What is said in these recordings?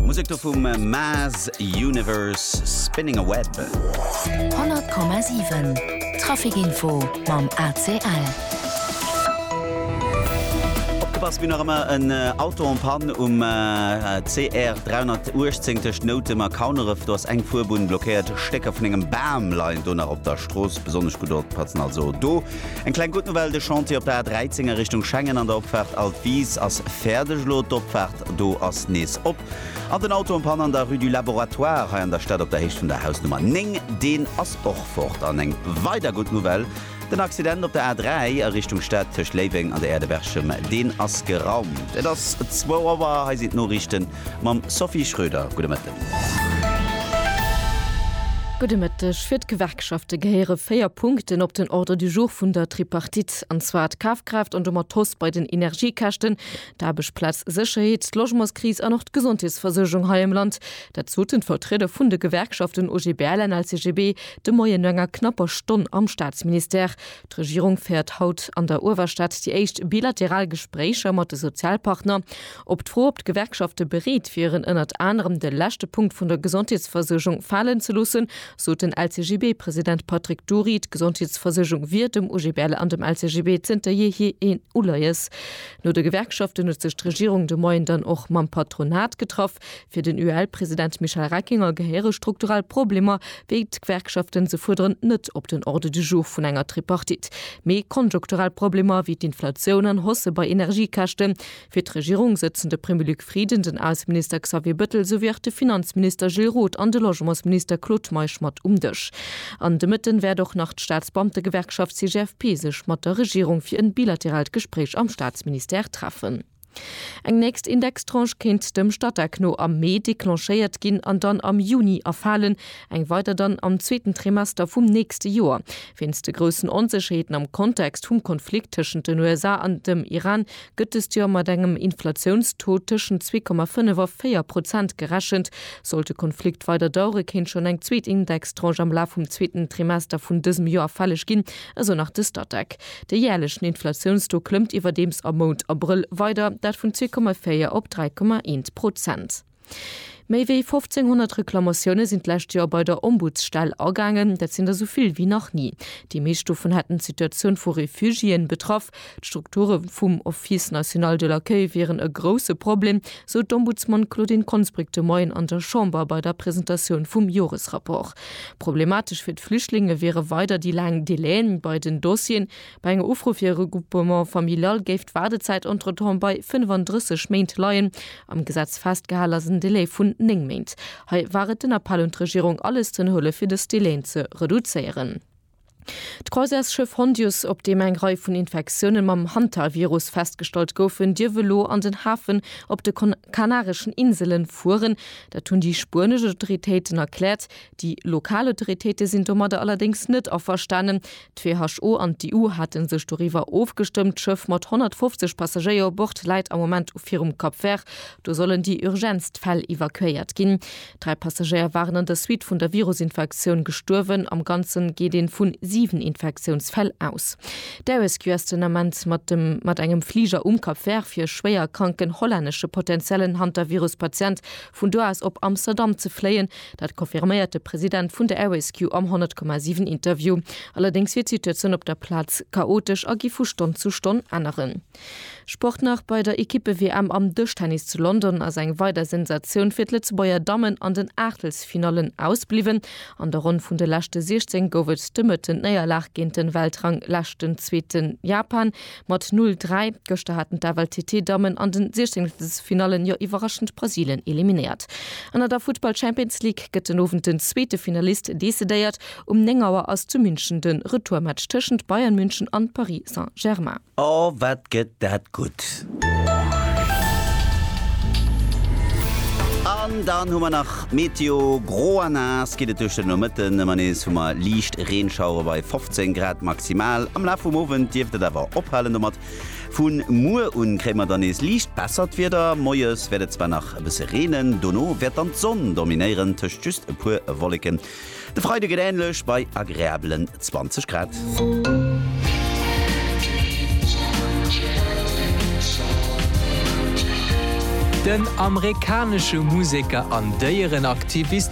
Musek do vum Mass Universe, Spinning a Web. 100,7 Trafikinfo mam ACL. Opgepasst, wien nach ëmmer en Auto en panne um CR 318 tëscht Noutem a Kauneref. Do ass eng Fuerbunn blockéiert. Stécker vun engem Bam leien do nach op der Strooss. Besonnesch gutt oppatzen also do. Eng kleng gutt Nouvelle, de Chantier op der A13 a Richtung Schengen an der Opfaart Al d'Wiis ass fäerdeg elo. D'Opfaart do ass nees op. An den Auto en panne an der Rue du Laboratoire hei an der Stad op der Héicht vun der Hausnummer 9, deen ass och fort. An eng weider gutt Nouvelle, den Accident op der A3 a Richtung Stad tëscht Léiweng an der Aire de Berchem, deen ass geraumt. Et ass zwou Auer, hei sinn d'Noriichten. Mam Sophie Schröder, gudde Mëtten. Gudde Mëtteg. Fir d'Gewerkschafte gehéiere véier Punkten op den Ordre du jour vun der Tripartite. An zwar d'Kafkraaft an domat d'Hausse bei den Energiekäschten, d'Aarbechtsplaz Sécherheet, d'Logementskris an och d'Gesondheetsversuergung hei am Land. Dat soten d'Vertrieder vun de Gewerkschaften OGBL an LCGB de Moien no enger knapper Stonn am Staatsministère. D'Regierung féiert haut an der Uewerstad déi éischt bilateral Gespréicher mat de Sozialpartner. Op d'Fro, ob d'Gewerkschafte bereet wieren, ënnert anerem de leschte Punkt vun der Gesondheetsversuergung falen ze loossen, sot den LCGB-President Patrick Dury, d'Gesondheetsversuergung wier dem OGBL an dem LCGB zënter jeehier een Uleies. No de Gewerkschaften huet sech d'Regierung de Moien dann och mam Patronat getraff. Fir den UEL-President Michel Reckinger gehéiere strukturell Problemer, wéi d'Gewerkschaften se fuerderen, net op den Ordre du jour vun enger Tripartite, mee konjunkturell Problemer, wéi d'Inflatioun an Hausse bei Energiekäschten. Fir d'Regierung sëtzen de Premier Luc Frieden, den Ausseminister Xavier Bettel souwéi och de Finanzminister Gilles Roth an de Logementsminister Claude Meisch mat um Dësch. An de Mëtten wäert och nach d'Staatsbeamtegewerkschaft CGFP sech mat der Regierung fir en bilateraalt Gespréich am Staatsministère treffen. Eng nächst Indextranche kéint dem Statec no am Mee declenchéiert ginn an dann am Juni erfalen, eng weider dann am zweeten Trimester vum nächste Joer. Wéinst de groussen Onsécherheeten am Kontext vum Konflikt tëschent den USA an dem Iran gëtt dëst Joer mat engem Inflatiounstaux tëschent 2,5 a 4 Prozent gerechent. Sollt de Konflikt weider dauere kéint schonn eng zweet Indextranche am Laf vum zweeten Trimester vun dësem Joer fälleg ginn, esou nach de Statec. De jäerlechen Inflatiounstaux klëmmt iwwerdeems am Mount Abrëll weider, dat vun 2,4 op 3,1 Prozent. Méi wéi 1500 Reklamatioune sinn d'lescht Joer bei der Ombudsstell agaangen. Dat sinn der sou vill wéi nach ni. Déi meescht dovun hätten d'Situatioun vu Refugiéen betraff. D'Strukture vum Office national de l'accueil wieren e grousse Problem, sou d'Ombudsman Claudine Konsbrück de Moien an der Chamber bei der Presentatioun vum Joresrapport. Problematesch fir d'Flüchtlinge wiere weider déi laang Delaien bei den Dossieren. Bei enger Ufro fir e Regroupement familial géif d'Waardezäit entretemps bei 35 Méint leien. Am Gesetz festgehal ass en Delai vun 9 Méint. Hei war et den Appell un d'Regierung, alles z'ënnerhuelen, fir dës Delaien ze reduzéieren. D'Croisièresschëff Hondius, op deem eng Rei vun Infektiounen mam Hantavirus festgestallt goufen, dierf elo an den Hafen op de kanareschen Insele fueren. Dat hunn déi spuenesch Autoritéiten erkläert. Déi lokal Autoritéite sinn domadder allerdéngs net averstanen. D'WHO an d'EU hate sech doriwwer ofgestëmmt. D'Schëff mat 150 Passagéier u Bord läit am Moment virum Cap Vert. Do sollen déi urgentst Fäll evakuéiert ginn. Dräi Passagéier waren an der Suite vun der Virusinfektioun gestuerwen. Am Ganze geet ee vu siwen Infektiounsfäll aus. D'ResQ ass den Ament mat mat engem Fliger um Cap Vert fir schwéierkranken hollännesche potentiellen Hantavirus-Patient vun do aus op Amsterdam ze fléien. Dat confirméiert de President vun der Air-Rescue am 100,7 Interview. Allerdéngs wier d'Situatioun op der Plaz chaotesch a gi vu Stonn zu Stonn änneren. Sport nach, Bei der Ekippe-WM am Dëschtennis zu London ass eng weider Sensatioun fir d'Lëtzebuerger Dammen an den Aachtelsfinallen ausbliwwen. An der Ronn vun de leschte 16 gouf et de Mëtten d'Néierlag géint de Weltrang-Leschten-Zweeten Japan. Mat 'Null Dräi', gëschter haten d'AFL TT Dammen an den Siechzengstelfinallen jo iwwerraschend Brasilien eliminéiert. An an der Futtball Champions League gëtt den Owend den zweete Finalist decidéiert. Um 9 Auer ass zu München de Retourmatch tëschent Bayern München an Paris Saint-Germain. Oh wat gëtt dat gutt! An dann hu mer nach d'Meteo, Gro a naass geet et duerch den Nomëtten, ëmmer nees hu mer liicht Reenschauere bei 15. 10 Grad maximal, am Laf vum Owend dierft et awer ophalen domat. Vu muer un kréie mer dann nees liicht bessert Wieder, moies wäert et zwar nach e bësse reenen, dono wäert dann d'Sonn dominéieren, tëscht just e puer Wolleken. De Freide gëtt änlech, bei agreabelen 20 Grad. Den amerikanesche Museker an Déierenaktivist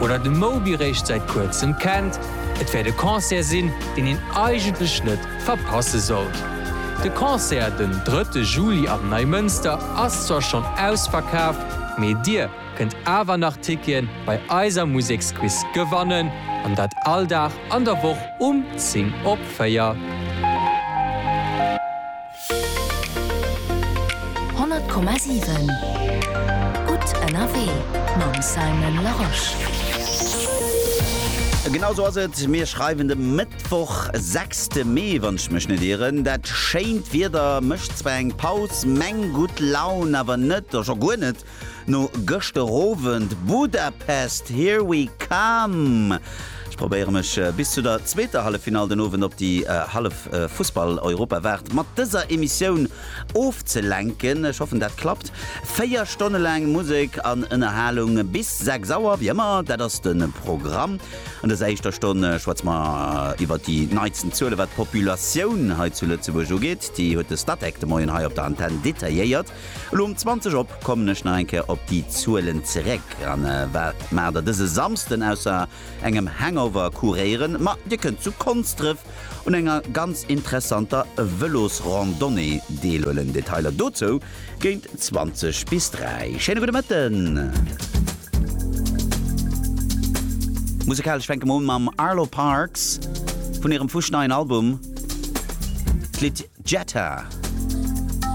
Oder de Moby réischt säit kuerzem kennt. Et wäert e Concert sinn, deen een eigentlech net verpasse sollt. De Concert den drëtte Juli am Neimënster ass zwar schonn ausverkaaft, mee dir kënnt awer nach Ticketen bei eiser Museksquiz gewannen, an dat all Dag an der Woch um 10 op 4. Honnert Komma siwen Gutt ënnerwee mam Simon Larosche. Genau esou ass et, mir schreiwen de Mëttwoch, sechste Mee, wann ech mech net ieren. Dat schéint Wieder mécht zwar eng Paus, meng gutt Laun awer net, jo guer net. No gëschter Owend Budapest, here we come! Ech probéiere mech bis zu der zweeter Halleffinall den Owend op déi hallef Fussball-Europawaart mat dëser Emissioun ofzelenken. Ech hoffen dat klappt. Véier Stonne laang Musek an Ënnerhalung bis 6 Auer, wéi ëmmer, dat ass de Programm. An dëser éischter Stonn schwätze mer iwwert déi neitsten Zuele wat d'Populatioun hei zu Lëtzebuerg ugeet. Déi huet de Statec de Moien hei op der Antenn detailléiert. Elo um 20 op kommen ech nach eng Kéier op déi Zuelen zeréck an wat maer der dëse Samsden ausser engem Hangover kuréieren, ma dir kënnt zu Konsdref un enger ganz interessanter Vëlosrandonnée deelhuelen. Detailer dozou géint 20 bis 3. Schéine gudde Mëtten! Musekalesch fänke mer un mam Arlo Parks vun hirem fuschneien Album. D'Lidd Jetta.